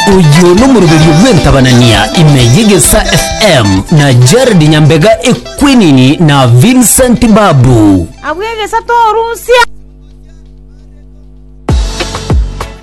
Oyio nomoroberio bw'entabanania ime y'egesa FM na Jared Nyambega Equinini na Vincent Babu. Abwo egesa torusia.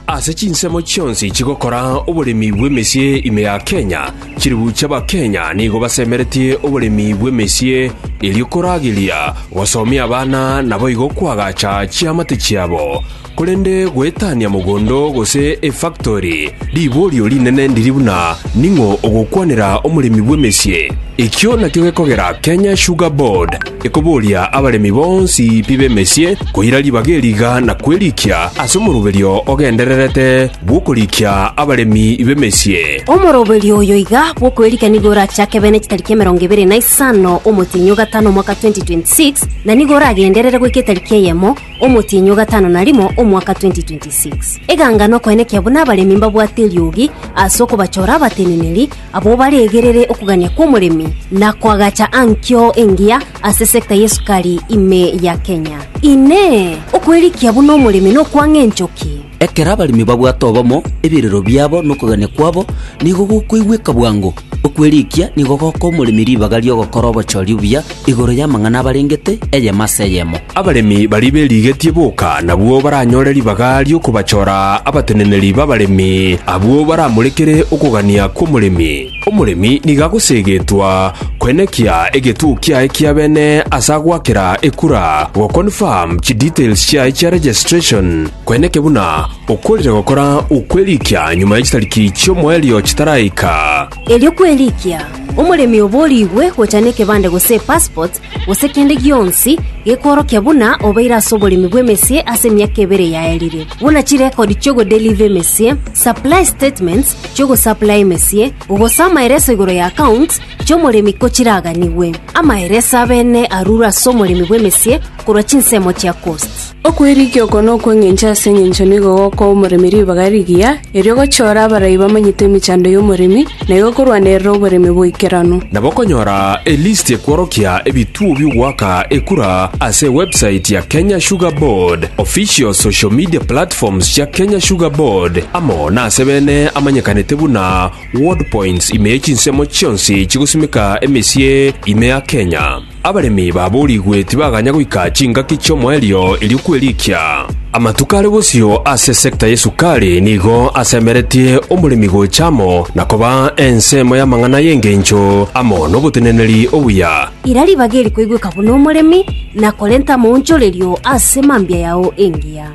Ase chinsemo chionsi chigokora oboremi bw'emesie ime ya Kenya, chilifu chi'Abakenya nigo basemeretie oboremi bw'emesie erio korageria gosomia abana naboigo koagacha chiamate chiabo. Korende goetania mogondo gose efaktori, riborio rinene ndiri buna ning'o ogokwanera omoremi bw'emesie. Ekio nakio gekogera Kenya Sugar Board ekoboria abaremi bonsi pi b'emesie koira ribaga eri iga na kwerikia ase omoroberio ogendererete bw'okorikia abaremi b'emesie. Omoroberio oyo iga bw'okwerikia nigo orachake bene chitariki emerongo ebere na isano omotienyi o gatano omwaka 2026, na nigo oragenderere goika etariki eyemo Omotienyi o gatano na rimo omwaka 2026. Eganga nokoenekia buna abaremi mbabwate eriogi ase okobachora abateneneri abwo baregerere okogania kw'omoremi na koagacha ankio engiya ase sector y'esukari ime ya Kenya. Inee! Okwerikia buna omoremi nokwang'a enchoki? Ekero abaremi babwate obomo, ebirero biabo na okogania kwabo nigo gokoigweka bwango. Okwerikia nigo gokoa omoremi ribaga ri'ogokora obochori obuya igoro y'amang'ana abarengete eyemo ase eyemo. Abaremi baria berigetie boka nabwo baranyore ribaga ri'okobachora abateneneri b'abaremi, abwo baramorekere okogania kw'omoremi. Omoremi nigo agoseegetwa koenekia egetuo kiaye kia bene ase agoakera ekura, goconfirm chidetails chiaye chia registration, koeneke buna okoorire gokora okwerikia nyuma ya chitariki chi'omoerio chitaraika. Erio kwerikia, omoremi obo origwe gocha nekebande gose epassport gose kende gionsi gekworokia buna obeire ase oboremi bw'emesie ase emiaka ebere yaerire, buna chirecord chi'ogodeliver emesie, supply statements, chi'ogosaplaya emesie, gose amaereso igoro y'accounts chi'omoremi ko chiraganigwe. Amaereso abene arurwe ase omoremi bw'emesie korwa chinsemo chia costs. Okwerigia oko nokw'engencho ase engencho nigo gokoa omoremi ribaga rigiya, erio gochiora abarai bamanyete emechando y'omoremi, na igo korwanerera oboremi bw'oikeranu. Nabo okonyora elisti ekworokia ebituo bi'ogoaka ekura ase ewebsite ya Kenya Sugar Board, official social media platforms chia Kenya Sugar Board, amo Onye ase bene amanyekanete buna Ward Points ime ye chinsemo chionsi chigosimeka emesie ime ya Kenya, abaremi baboorigwe tibaganya goika chingaki chi'omoerio erio kwerikia. Amatuko are bosio ase sector y'esukari nigo asemeretie omoremi gocha amo na koba ensemo y'amang'ana y'engencho amo n'oboteneneri obuya. Ira ribaga erikoigweka buna omoremi, na korenta amaonchorerio ase mambia yao engiya.